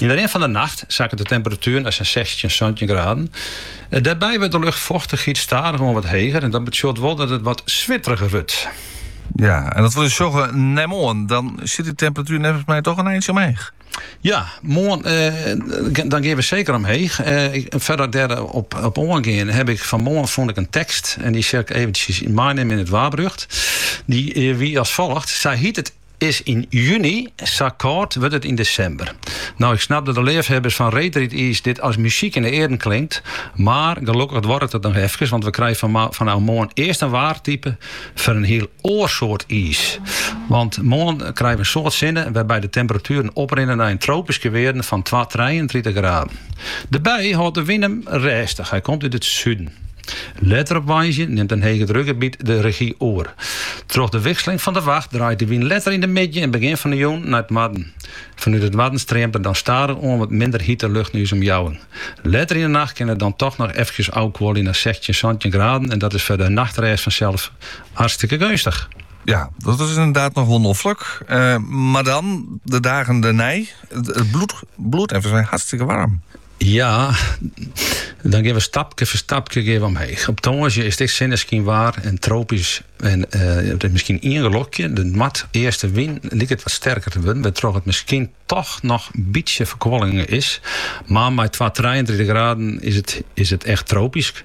Yn de rin fan de nacht sakket de temperatuer nei sa'n sechstjin, santjin graden. Dêrby wurdt de luchtfochtichheid stadichoan wat heger en dat betsjut wol dat it wat switteriger wurdt. Ja, en dat wol dus sjogge nei moarn. Dan sjit dy temperatuer neffens my toch in eintsje omheech. Ja, moarn eh, dan gean we seker omheech. Eh, fierder dêrop, op oangean heb ik fan 'e moarn fûn ik in tekst. En dy sil ik eventjes meinimme yn it waarberjocht. Die eh, wie als volgt. Sa hjit it Is yn juny, sa kâld wurdt it yn desimber. No, ik snap dat de leafhebbers fan reedrydiis dit as muzyk yn de earen klinkt, mar gelokkich duorret it noch efkes, want we krije fanôf moarn earst in waartype foar in hiel oar soart iis. Want moarn krije we in soad sinne wêrby't de temperatueren oprinne nei in tropyske wearden fan twa-, trijentritich graden. Dêrby hâldt de wyn him rêstich, hy komt út it suden. Letter op woansdei nimt in hegedrukgebiet de rezjy oer. Troch de wikseling fan de wacht draait de wyn letter yn de middei en begjin fan 'e jûn nei it noarden. Fanút it noarden streamt der dan stadichoan wat minder hite lucht nei ús omjouwing. Letter yn 'e nacht kin it dan toch noch efkes ôfkuolje nei sechstjin, santjin graden en dat is foar de nachtrêst fansels hartstikke geunstich. Ja, dat is inderdaad noch wol noflik. Eh, mar dan, de dagen dêrnei, it bliuwt, bliuwt even sa hartstikke waarm. Ja, dan gean we stapke foar stapke gean we omheech. Op tongersdei is it ek sinneskynwaar en tropysk en it is miskien ien gelokje. De noardeastewyn liket wat sterker te wurden, wêrtroch't it miskien toch noch in bytsje ferkuolling is. Mar mei twa-, 33 graden is it, is it echt tropysk.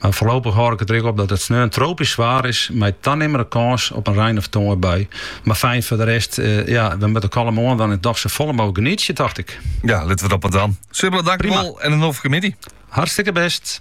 Mar foarlopich hâld ik it der ek op dat it sneon tropysk waar is mei tanimmende kâns op in rein- of tongerbui. Mar fijn foar de rest, ja, we moatte kalm oan dwaan en dochs sa folle mooglik genietsje, tocht ik. Ja, litte we dat mar dwaan. Sibylle, dankjewol en in noflike middei. Hartstikke best.